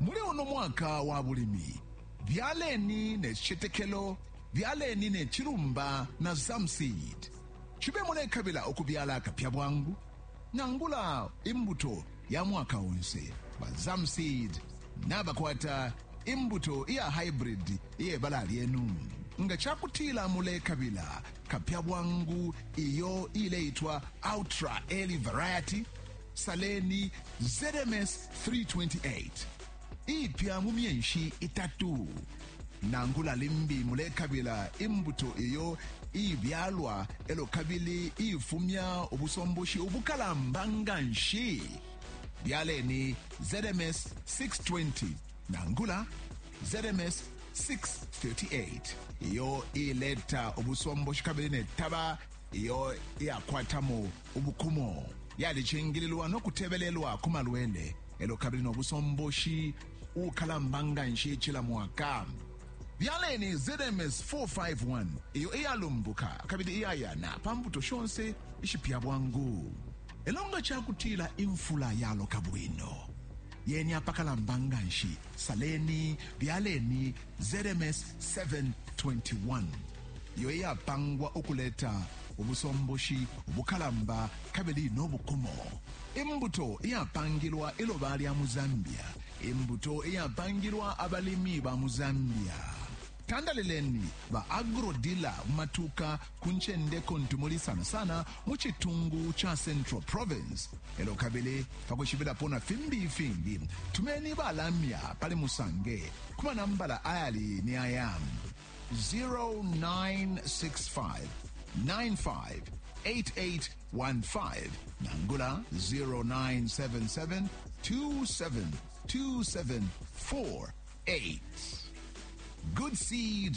Muli uno mwaka wa bulimi, byaleni ne cicetekelo, byaleni ne cilumba na Zam Seed. Cibe mulekabila ukubyala akapya bwangu nangula imbuto ya mwaka onse, ba Zam Seed nabakwata imbuto iya haibridi iye bala lyenu. Nga ca kutila mulekabila kapya bwangu iyo iileitwa Ultra Early Variety, Saleni ZMS 328 ipya mu myenshi itatu nangula limbi mulekabila imbuto iyo ibyalwa elo kabili ifumya ubusomboshi ubukalamba nga nshi byaleni ZMS 620 nangula ZMS 638 iyo ileta ubusomboshi kabili netaba iyo iyakwatamo Ubukumo, Yalicingililwa no kutebelelwa ku malwele e lyo kabili no busomboshi ubukalamba nga nshi cila mwaka. Byaleni ZMS 451 iyo iyalumbuka kabili iyayana pa mbuto shonse ishipya bwangu. E lyo nga ca kutila imfula yaloka bwino, yeni apakalamba nga nshi, saleni, byaleni, ZMS 721 iyo iyapangwa ukuleta ubusomboshi ubukalamba kabili no bukumo imbuto iyapangilwa iloba lya mu zambia imbuto iyapangilwa abalimi ba mu zambia tandalileni ba agrodila mu matuka ku ncende kuntu muli sana sana mu citungu ca central province elo kabili pakushibilapo na fimbi ifingi tumeni balamya pali musange ku manambala ayali ni aya 0965 95 8815 nangula 0977 272748 good seed